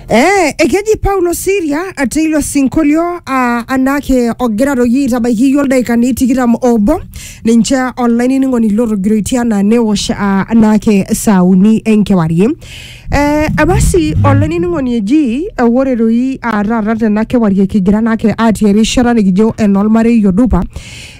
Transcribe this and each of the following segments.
Eh, ekeji Paulo Siria te ilo sinkolio uh, anake ogira toki aitabaiki iyie oldaikani tikitam obo ninche olainining'oni lotogiroitie anaa newosh uh, anake saa uni enkewarie eh, basi olainining'oni eji eh, ore doi uh, taata tena kewarie kigira anake atii erishata nikijo enolmarei odupa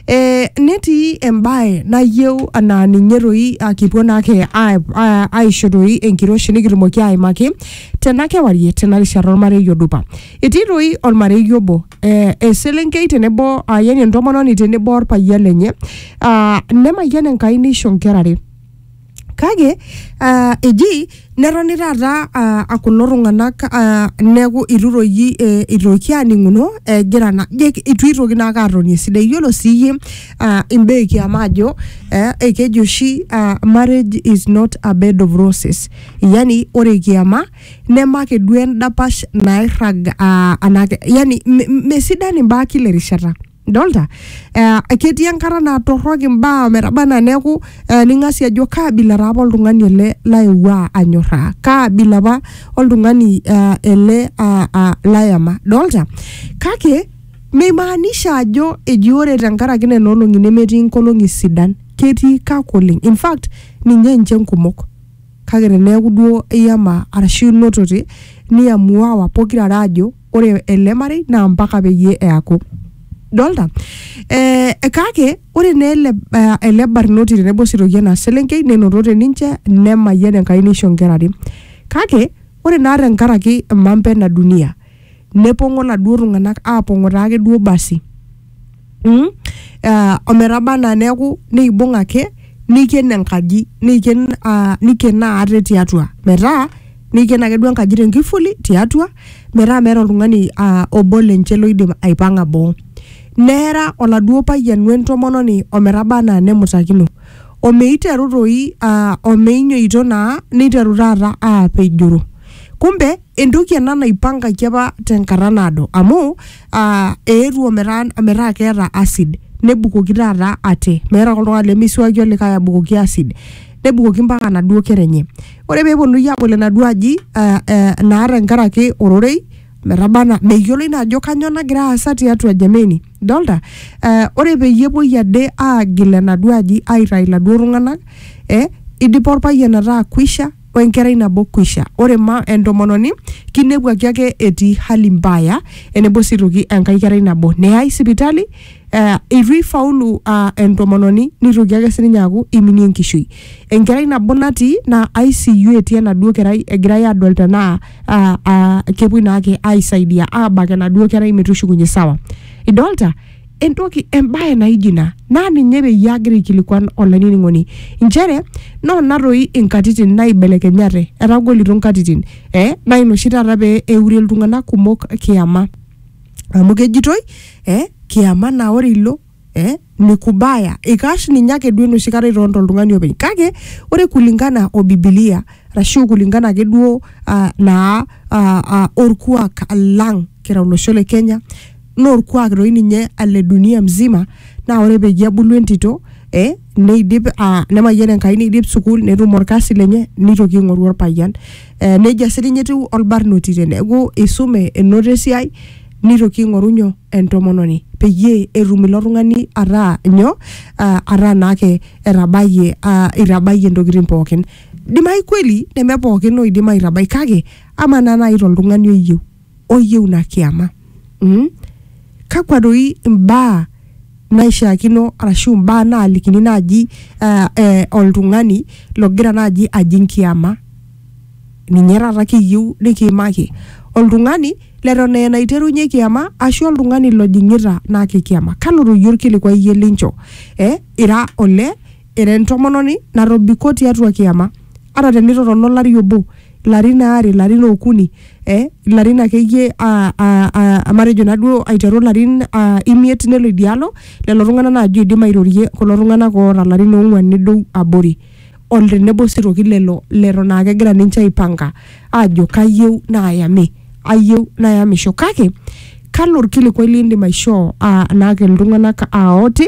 Eh, netii embae nayieu anaa ninye toi ah, kipuo naake a- a- aisho toi enkiroshi nikitumoki aimaki tena kewarie tena rishata ormarei odupa etii toi ormarei obo eh, eselenkei tenebo ah, yani entomononi tenebo orpayian lenye ah, nemayian enkai nisho nkera are kake uh, eji netoni taata uh, akulo tung'anak uh, neeku itu toki eh, itoki aning'uno egira na je itu itoki naake atoni esidai iyiolo sii iyie uh, imbaa ekiama ajo eh, ekeji oshi uh, marriage is not a bed of roses yani ore kiama nemake duo endapash nairrag uh, anake yani me- me- mesidani imbaa kila erishata Dolta? Eh, ketii enkata naa torrok imbaa ometaba anaa neeku eh, ning'asi ajo kaa abila taa apa oltung'ani ele laewua anyorraa kaa abila apa oltung'ani eh, ele ah, ah, layama dolta kake meimaanisha ajo eji ore tenkaraki nena olong'i nemetii nkolong'i sidan ketii kak oleng in fact ninye inche nkumok kake teneeku duo iyama arashu inotote niamuawa pokirare ajo ore ele marei naa mpaka peyie eaku dolta eh, kake ore naa ele, eh, ele barnoti tenebo sitoki ena selenkei nenotote ninche nemayian Enkai neisho inkera are kake ore naa tenkaraki mambo ena dunia nepong'o laduo tung'anak apong'o taake duo basi mm, uh, ometaba anaa neeku neibung ake neiken enkaji neiken uh, neikenaa ate tiatua metaa neiken ake duo enkaji tenkifuli tiatua metaa meeta oltung'ani uh, obo lenche loidim aipang'a boo neera oladuo payian wentomononi ometaba anaa nemutakino omeiteru toi uh, omeinyoito naa neiteru taata aapejoro kumbe entoki ena naipangaki apa tenkata naado amu uh, eetuo metaa metaa keeta acid nebukoki taata ate meeta ake oltung'ani lemeisuaki olikae abukoki acid nebukoki mpaka enaduo kera enye ore peeponunui abol enaduo aji uh, uh, naa tenkaraki ororei metabana meyioloi naa ajo kanyoo nagira aasa tiatua jameni dolta uh, ore peyie epuoi ade aagil enaduo aji aitai iladuo tung'anak eh, idipa orpayian ataa kwisha o enkerai nabo kwisha. Ore ma entomononi kinepuaki ake etii hali mbaya enebo sii toki enkae kerai nabo neyai sipitali eh, eitu eifaulu ah, entomononi nitoki ake sininye aaku iminie enkishui. Enkerai nabo natii naa ICU etii enaduo kerai egirai adol tenaa ah, ah, kepuoi naake aisaidia abak enaduo kerai metushukunye sawa. Idolta? entoki embae naijo ina naa ninye peyie agira aikilikuan olainining'oni inchere noona toi inkatitin naibelekenyate etagolito inkatitin eh, naa ina oshi taata pee eurie iltung'anak kumok kiyama amu kejitoi eh, kiyama naa ore ilo eh, ni kubaya ikash ninye ake duo enoshi kata itonta oltung'ani openy kake ore kulingana o bibilia arashu kulingana ake duo uh, naa uh, uh, orkuak lang kira olosho le kenya naa orkuak doi ninye ale dunia mzima naa ore peyie ebulu entito eh, neidip ah, nemayian Enkai neidip sukuul netum orkasi lenye neitoki aing'oru orpayian eh, nejia sii ninye etiu olbarnoti teneeku isume enoto esiai nitoki aing'oru nyoo entomononi peyie etum ilo tung'ani ataa nyoo ah, ataa naake etabayie ah, itabayie intokitin pookin dimai kweli neme pookin oidim aitabai kake amaa naa naaji toltung'ani oyieu oyieu ina kiama mm? kakwa doi imbaa naishiakino arashu imbaa naalikini naaji uh, eh, oltung'ani logira naaji ajing kiama ninye taata kiyieu nikiimaki oltung'ani leton aa enaiterunye kiama ashu oltung'ani lojing'ita naake kiama kalo toi orkilikuai iyie lincho eh, ira ole Ira entomononi natobiko tiatua kiama, ata tenitotona olari obo, ilarin aare, ilarin okuni, eh, ilarin akeyie ah, ah, ah, matejo naduo aiteru ilarin ah, imiet nelo idialo, lelo tung'anak naji oidim airorie kulo tung'anak oota ilarin ong'uan nedou abori. O tenebo si toki lelo leton akegira ninche aipanka ajo kayieu nayami. Ayieu nayamisho. Kake, kalo orkilikwai lidim aishoo ah, enake iltung'anak ah, oti,